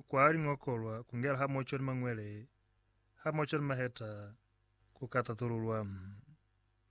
kwa liñokolwa ku ngela hamoco ni mañwele hamoco ni maheta ku ka tatululwa.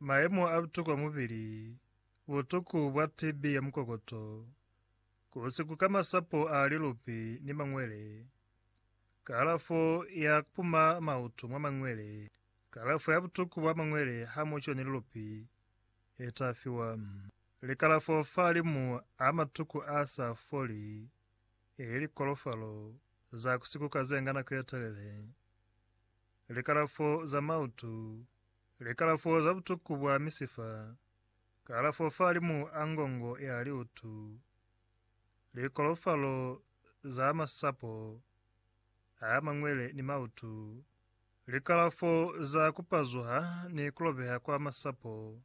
Mayemo a butuku a mubili, butuku bwa TB ya mukokoto, ku si kuka masapo a lilupi ni mañwele, kalafo ya ku puma mautu mwa mañwele, kalafo ya butuku bwa mañwele hamoco ni lilupi e ta fiwa. Likalafo fa limu a matuku a sa foli Ili likolofalo za ku sikuka ze nga nako ye telele, likalafo za mautu, likalafo za butuku bwa misifa, kalafo fahalimu a ngongo ya liutu, likolofalo za masapo a mañwele ni mautu, likalafo za ku pazuha ni ku lobeha kwa masapo,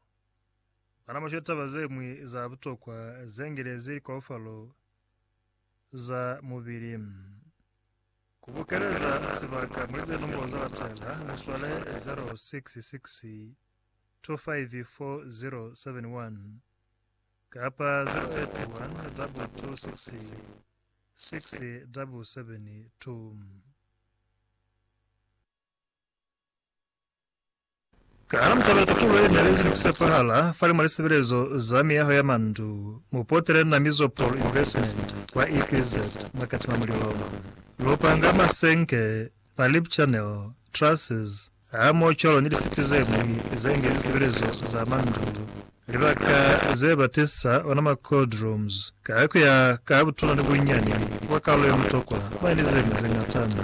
bana mwa shwetaba ze ñwi za butokwa ze ngelezi likolofalo za mubili. Ku bukeleza sibaka mwa ze nombolo za batala, mu swale 0662544071 kapa 0812667772. Ka mutala tutulo ye nelezi ni ku sepahala fani mwa lisebelezo za miyaho ya mandu, mu potele na mizo Paul Investment kwa EPZ mwa Katima Mulilo. Lu panga masenke, ma lip channel, trusses, hamoho cwalo ni lisiti ze ñwi ze nge lisebelezo za mandu. Libaka ze ba tisisa ona ma cold rooms ka ku ya ka butuna ni bunyani bwa kalulo ye mutokwa, mwa ni ze ñwi ze ñatana.